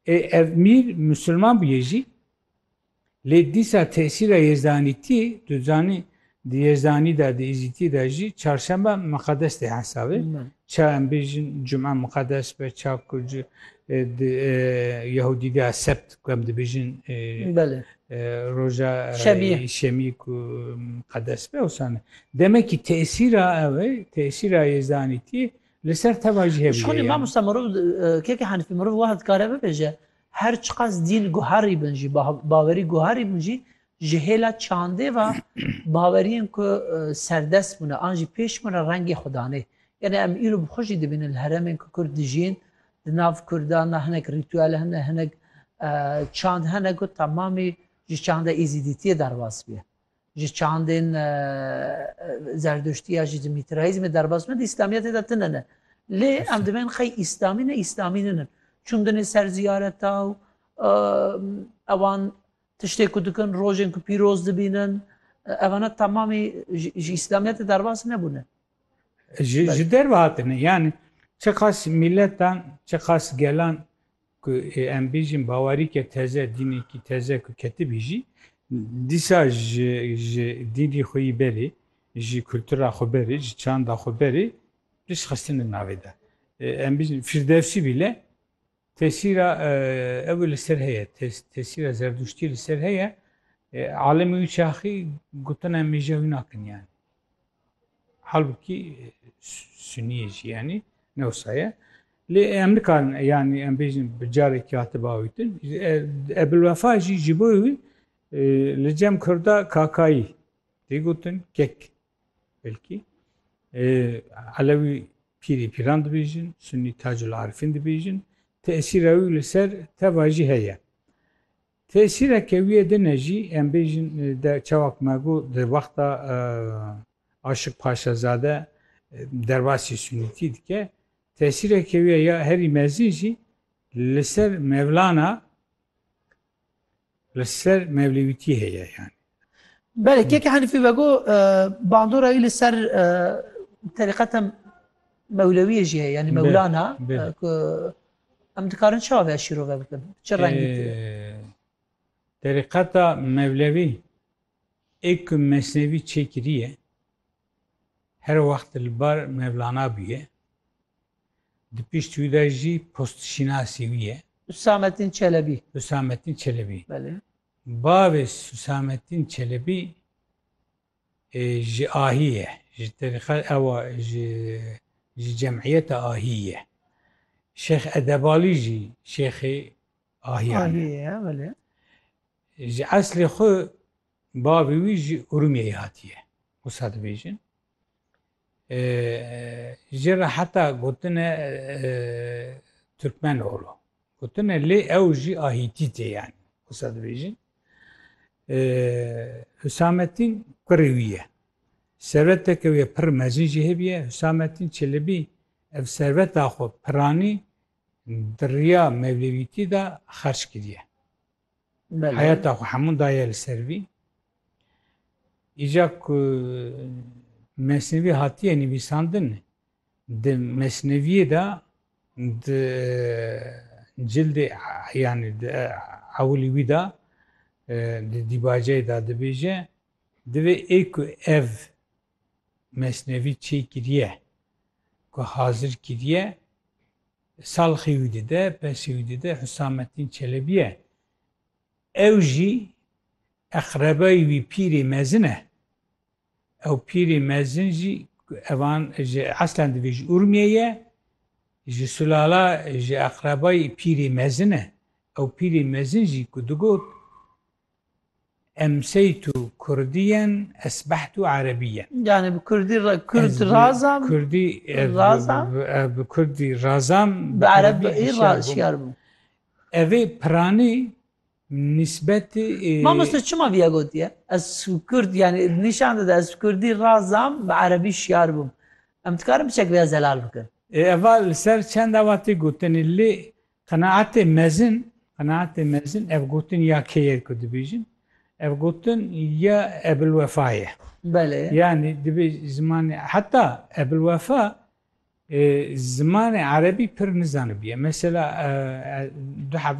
Ê ev mîr musulman bûye jî lê dîsa tesîra yezdanîtî tu zanî di yezdanî de di êzîtî de jî çarşembe miqedes tê hesabê. Ça em bêjin cuma miqedes be ça ku di Yehudî de sebt ku em dibêjin roja şemî ku miqedes be wisa ne. Demekî tesîra ew e tesîra yezdanîtî Li ser teva jî hevî ye yani. Mamosta mirov keke henfî mirov wiha dikare bibêje, her çiqas dîn guherî bin jî, bawerî guherî bin jî ji hêla çandê ve baweriyên ku serdest bûne an jî pêş bûne rengê xwe danê. Yanî em îro bi xwe jî dibînin li heremên ku kurd dijîn, di nav kurdan de hinek rîtûel hene, hinek çand hene ku temamî ji çanda Êzîdîtiyê derbas bûye. Ji çandên zerduştiya jî di mîtraîzmê derbas me di îslamiyetê de tune ne. Lê em dibên xey îslamî ne îslamî ninin. Çundinê ser ziyareta û ewan tiştê ku dikin rojên ku pîroz dibînin evana tamamî ji îslamiyetê derbas nebûne. Ji derve hatine yani çiqas miletan çiqas gelan Ku em bêjin bawerîke teze, dînekî teze ku ketibî jî dîsa ji ji dînrî xwe yî berê, ji kultura xwe berê, ji çanda xwe berê pişt xistine navê de. Em bêjin Firdewsî bîle tesîra ew li ser heye, tesîra zerdûştî li ser heye. Alimê wî çaxî gotina mêja wî nakin yani. Halbuki Suniyê jî yanî newsa ye. Lê em nikarin yanî em bêjin bi carekî hatibe awîtin. Ebilwefa jî ji bo wî li cem Kurda kakayî tê gotin kek belkî. Elewî pîrî pîran dibêjin, Sunî tacul arifîn dibêjin. Tesîra wî li ser teva jî heye. Tesîra kewiyê din e jî em bêjin de çawa ku me got di wexta Aşik Paşazade derbasî Sunîtî dike tesîra kewiyê ya herî mezin jî li ser Mevlana li ser Mevlewîtî heye yanî. Belê keke Henîfî vego bandora wî li ser terîqeta mewlewiyê jî heye yanî mewlana ku em dikarin çawa vê şîrove bikin çi rengî terîqeta mewlewî ê ku mesnevî çêkiriye her wext li bar mevlana bûye di pişt wî de jî postşînasî wî ye Hüsamettin Çelebi. Hüsamettin Çelebi. Belê. Bavê Husamettin Çelebî ji Ahî ye, ji terîqe ewa ji ji cemîyeta Ahî ye. Şêx Edebalî jî şêxê Ahîyan e. Ji eslê xwe bavê wî ji Urmiyeyê hatiye, wisa dibêjin. Ji re heta gotine Türkmen oğlu. Gotine lê ew jî a Hîtîtê yani wisa dibêjin. Hüsamettin kurê wî ye. Serveteke wê pir mezin jî hêbiye Hüsamettin Çelebî ev serveta xwe piranî di riya mevlevîtî de xerç kiriye. Heyata xwe hemû daye li ser vî. Îca ku mesnevî hatiye nivîsandin di mesneviyê de di cildê yanî di ewilî wî de di dîbaceyê de dibêje divê ê ku ev mesnevî çêkiriye ku hazir kiriye Salxî wî dide, pesî wî dide Husamettin Çelebî ye. Ew jî eqrebayî wî pîrê mezin e. Ew pîrê mezin jî evan ji eslan divê ji Urmiyê ye. Ji sulala ji eqrebayî pîrê mezin e. Ew pîrê mezin jî ku digot Emseytu Kurdiyen esbehtu Erebiyen. Yani bi Kurdî Kurd razam. Kurdî razam. Bi Kurdî razam. Bi Erebî şiyar bûm. Evê piranî nisbetî Mamoste çima vîya gotiye? Ez Kurd yani nîşan dide ez Kurdî razam bi Erebî şiyar bûm. Em dikarin biçek vêya zelal bikin. Eva li ser çend awa tê gotinê lê Qenaetê mezin, qenaetê mezin ev gotin ya kê ye ku dibêjin? Ev gotin ya Ebilwefa ye. Belê. Yanî dibê zimanê heta Ebilwefa e, zimanê erebî pir nizanibiye. Mesela e, e, du hevû